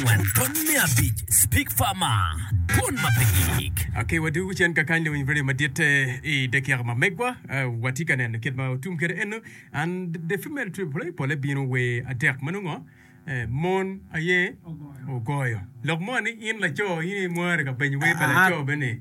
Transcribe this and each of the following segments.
angwen pwony me abic speak farmer dwon ma pe giyik. Okay wadu wucen kakany lewiny radio madit i dakiaka ma megwa watye ka neno kit ma otum kede eno and the female trip play pole bino wer atek ma nongo mon aye ogoyo lok mo ni in laco in imwari ka benyo wer pa laco bene.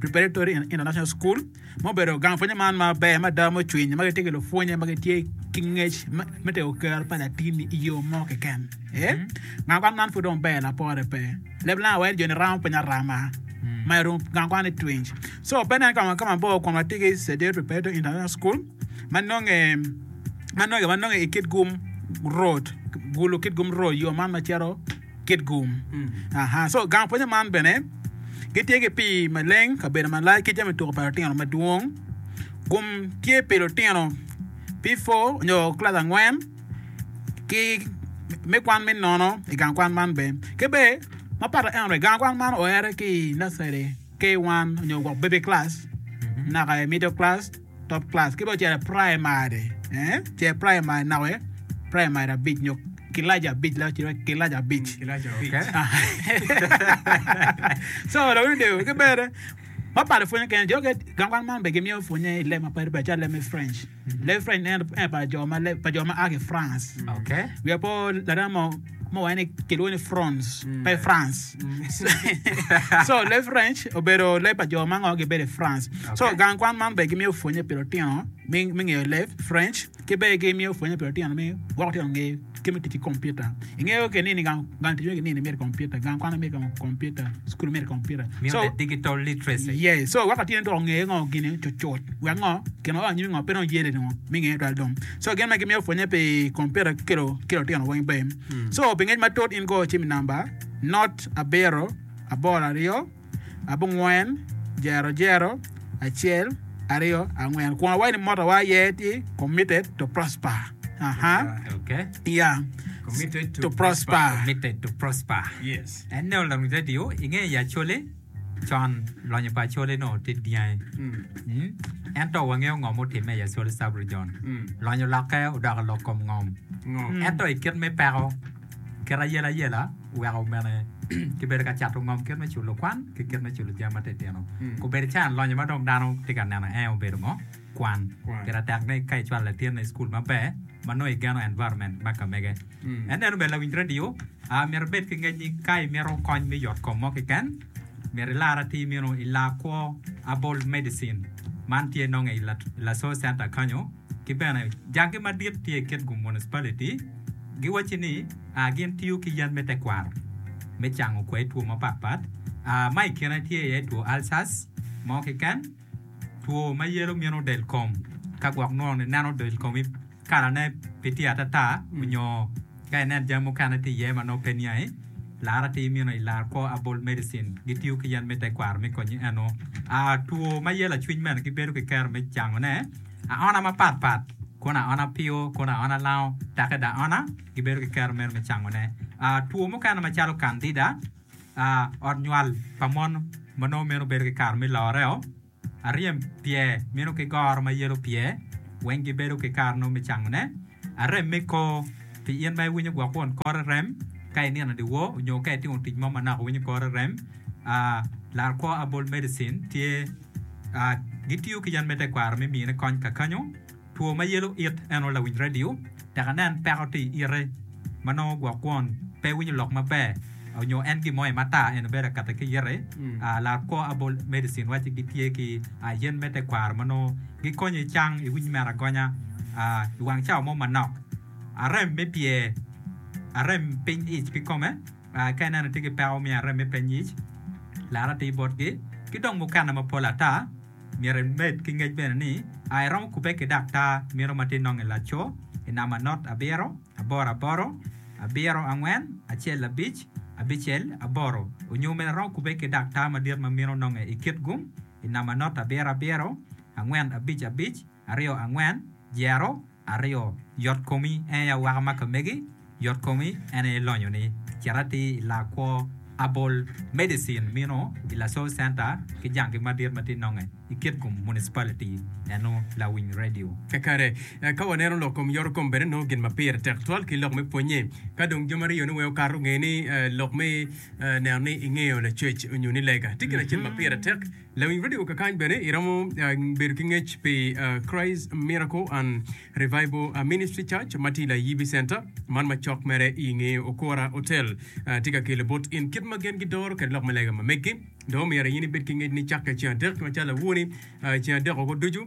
Preparatory and International School, ma obedo gang pwonye man ma ber mada ma ocwiny ma gitye ki lupwonye ma gitye ki ngec me tego kero pa latin i yo mo keken. Ee, gang kwan man pud dong ber lapore pe. Leb lang awel joni ramo piny arama. Ma i room gang kwan i twinj. So, pe nen kama kama bor kun watye ki Sedate Preparatory International School ma nonge ma nonge ma nonge i kit gum road gulu kit gum road yo man ma cito kit gum. Aha, so gang pwonye man bene gitye ki pii maleng, kabedo malac ki jami tuko pa lutino madwong. Gum tye pi lutino P4 nyo kilac angwen ki me kwan me nono i gang kwan man bene. Ki bene mapat aye gang kwan man oere ki i nursery. K1 onyo gwok baby class naka i middle class, top class ki dong ocito i primary ce primary nako iye primary abic nyo kilaci abic lak ocito ki kilaci abic so lawiny odego ki bene mapalo pwonye kene jo ge gang kwan man bene gimiyo pwonye i leb mapadi padi calo leb me French leb French en pa jo ma a ki France wiya pe owor lanen mo mo waneno ni kilwongo ni France, pe France. so leb French obedo leb pa jo ma ngo gibedo i France. So gang kwan man be gimiyo pwonye pi lutino me me ngeyo leb French ki be gimiyo pwonye pi lutino me gwoko lutino nge kit me tic ki kompiuta. Ingeyo ke ni ni gang gang tic ki nini myero kompiuta, gang kwan myero kompiuta, skul myero kompiuta. Miyo So the digital literacy. yeah, so weko atye ni dong ongeyo ngo gine cucut wek ngo gin ma oa anyim ngo pe dong yeleni ngo me ngeye twal dong. So gin ma gimiyo pwonye pi komputa ki kelo ki lotino weng be. So pi ngec matut in go cim i namba not abiro aboro aryo abongwen jero jero acel aryo angwen kun awayi ni motowa aye tye committed to prosper. Aha. Okay. Yeah. Committed to, To prosper. Committed to prosper. Yes. Ene olam radio inge ya chole. Con, lonyo pa Acholi nongo tye dyangi. Ento wangeyo ngo mutimme i Acholi Sub-Region. Lonyo olokke odoko lok kom ngom. Ento i kit me peko, kit ayelayela oweko omene kibedo ka cato ngom kit me culo kwan ki kit me culo jami matitino. Obedo cayan lonyo ma dong dano tye ka neno en aye obedo ngo? Kwan. Pire tek ni ka icwalo latinni i cukul maber ma nongo igeno environment me kamege. En neno ber lawiny radio. A Myero ibed ki ngec ni ka imito kony me yotkom mo keken, myero ilar atir meno i laa kwo Abol Medicine. Man tye nonge i Laso Center kanyo. Ki bene, janggi madit tye i Kitgum Municipality. Giwacci ni a gin tiyo ki yen me tekwaro me cango kwai two mapat pat. A Ma i kine tye iye two ulcers mo keken, two ma yelo mino del kom ka gwok nwo ni neno del komi. Kalane pe tye atata onyo ka inen jami mukene tye iye ma nongo pe niangi, lar atir imino i lar kwo Herbal Medicine. Gitiyo ki yen me tekwaro me konyi eno. Aa, two ma yelo acwiny bene gibedo ki kero me cangone. Aona mapat pat, kono aona pio, kono aona lango, take da aona, gibedo ki kero meno me cangone. Aa, two mukene macalo kandida, aa, ot nywal pa mon ma nongo meno bedo ki kare me loreo. Aryem pye mino ki goro ma yelo pye weng gibedo ki kare nongo me cangone. Arem me kor, Pi in ma iwinyo gwok won kore rem ka inino dyewor onyo ka itimo tic mo manok iwinyo kore rem, larkwo Abol Medicine tye. Gitiyo ki yen me tekwaro me mine kony kakanyo. Two ma yelo it en aye lawiny radio tek anen peko tye i ite ma nongo gwok kwon pe winyo lok maber onyo en gin mo aye matar en obedo akata ki ite laa kwo herbal medicine wacci gi tye ki yen me tekwaro ma nongo gi konyo i cang i winy mere agonya i wang cawa mo manok arem me pye arem piny ic kikome ka i neno itye ki peko me arem me piny ic laro atir botgi ki dong mukene mapol ata. Myero imed ki ngec bene ni a iromo kubbe ki daktar mito ma tye nongo i laco i namba not abiro, aboro aboro, abiro angwen, acel abic, abicel aboro, onyo omeda romo kubbe ki daktar madit ma mito nonge i kit gum i namba not abiro abiro, angwen abic abic, aryo angwen, dyero, Aryo, yot komi en aye awaka ma ka megi, yot komi en aye lonyo ni cit ati i laa kwo abol medicine mino i Lasalle Center ki jangi madit ma tye nonge i Kitgum Municipality eno lawiny radio. Kakare, ka waneno lok kom yot kom bene nongo gin ma pire tek twal ki lok me pwonye. Ka dong jami aryo ni weng okato, nge ni lok me neno ni ingeyo lacwec onyo ni lega tye gin acel ma pire tek. Lawiny redio kakany bene iromo bedo ki ngec pi Christ Miracle and Revival Ministry Church ma tye i Layibi Center, man ma cok mere i nge Okora Hotel. Tye ka kelo bot in kit ma gin gidoro kwede lok me lega ma meggi. Dong omyero in ibed ki ngec ni cakke ceng adek macalo awoo-ni, ceng adek woko ducu.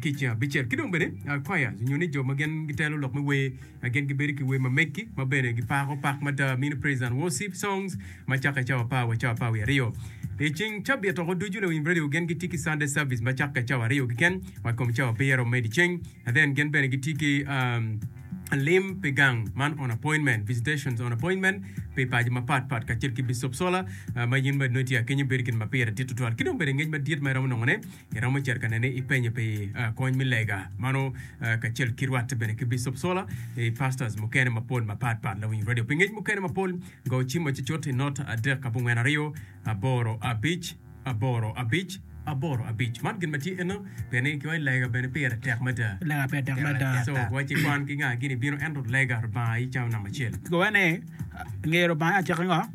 kica abicel. Ki dong bene, choirs nyo ni jo ma gin gitelo lok me wer, gin gibedo ki wer ma meggi ma bene gipako pak mada, mini praise and worship songs, ma cakke cawa apar wa cawa apar wiye aryo. I ceng cabit woko ducu luwiny radio gin gitye ki Sunday service ma cakke cawa aryo keken wa i kom cawa abiro me dyeceng. And then gin bene gitye ki um, lim pi gang man on appointment, visitations on appointment pi paco mapat pat kacel ki Bicop Solar, uh, ma in bene nongo itye akenyo bedo gin ma pire dit tutwal. Ki dong bene ngec madit ma iromo nongone, Iromo cito ka nene ipenyo pi kony me lega mano kacel ki rwatte bene ki Bicop Sola i pastors mukene mapol mapat pat lawiny radio pi ngec mukene mapol go cim macucut i not adek abongwen aryo aboro abic aboro abic aboro abic man gin matye eno pien ni kiwaci lega bene pire tek mada Lega pire tek mada. so waci kwan ki nga gin ibino ento lega Lubanga aye calo namba acel. Gowa ni ngeyo Lubanga aye acakki ngo?